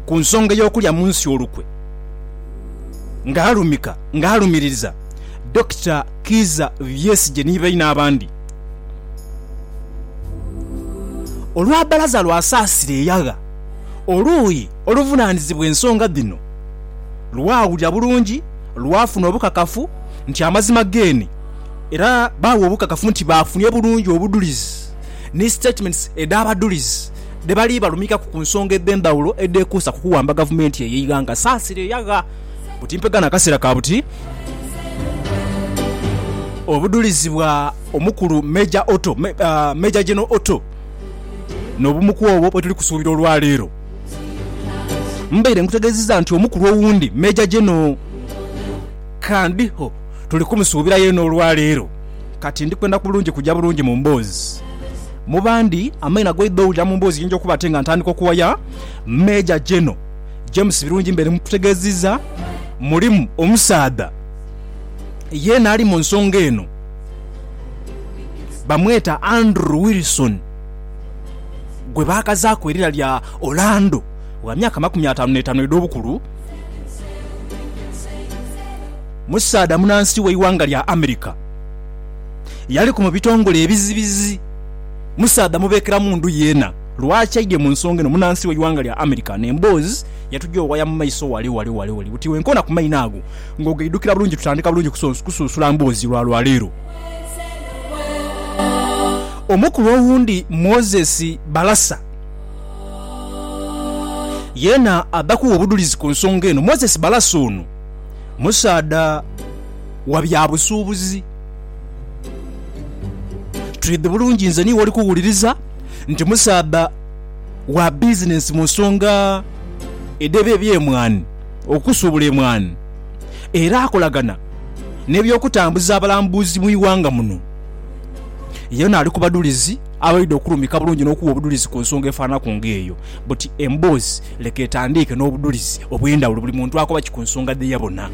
Ku nsonga ey'okulya mu nsi olukwe ng'alumika ng'alumiririza, Dokita Kiiza Byesigye ni baine abandi olwa bbalaza lwa Saasira eyagha oluuyi oluvunaanizibwa ensonga dhino lwawulira bulungi lwafuna obukakafu nti amazima geene era baagha obukakafu nti baafunye bulungi obudhulizi ni statements edh'abadhulizi dhe bali balumikaku ku nsonga edh'endhaghulo edheekuusa ku kuwamba gavumenti eyo eighanga saasire eyagha buti mpega n'akaseera ka buti. Obudhulizi bwa omukulu Major Otto, Major General Otto n'obumuku obwo bwetuli kusuubira olwaleero. Mbaire nkutegeezizza nti omukulu owundi Major General Kandho tuli kumusuubira yeena olwaleero. Kati ndi kwenda bulungi kuja bulungi mu mboozi. Mu bandi, amaina goidha owulira mu mboozi eyinja okuba ate nga ntandika okuwaya. Major General James Birungi mbeere mukutegeziza, mulimu omusaadha yeena ali mu nsonga eno bamweta Andrew Wilson gwe baakazaaku erira lya Orlando wa myaka makumi ataanu n'etaanu edh'obukulu. Musaadha munansi w'eighanga lya America eyaliku mu bitongole ebizibizi. Musaadha mubeekera mundu yeena. Lwaki aidye mu nsonga eno munansi w'eighanga lya America n'emboozi yetugya owaya mu maiso wale wale wale wale buti wenkoona ku maino ago ng'ogaidhukira bulungi tutandika bulungi kusunsula mboozi lwa lwa leero. Omukulu owundi Moses Balasa yeena adhaku obudhulizi ku nsonga eno. Moses Balasa ono Musaadha wa bya busuubuzi. Twidhi bulungi nze niiwe oli kuwuliriza nti musaadha wa bizinensi mu nsonga edh'eby'emwaani, okusuubula emwaani, era akolagana n'eby'okutambuza abalambuzi mu ighanga muno. Yenha ali ku badhulizi abaidhi okulumika bulungi n'okuwa obudhulizi ku nsonga efaananaku ng'eyo. But emboozi Leka etandiike n'obudhulizi obw'endhawulo buli muntu akoba ki ku nsonga dhe yabona.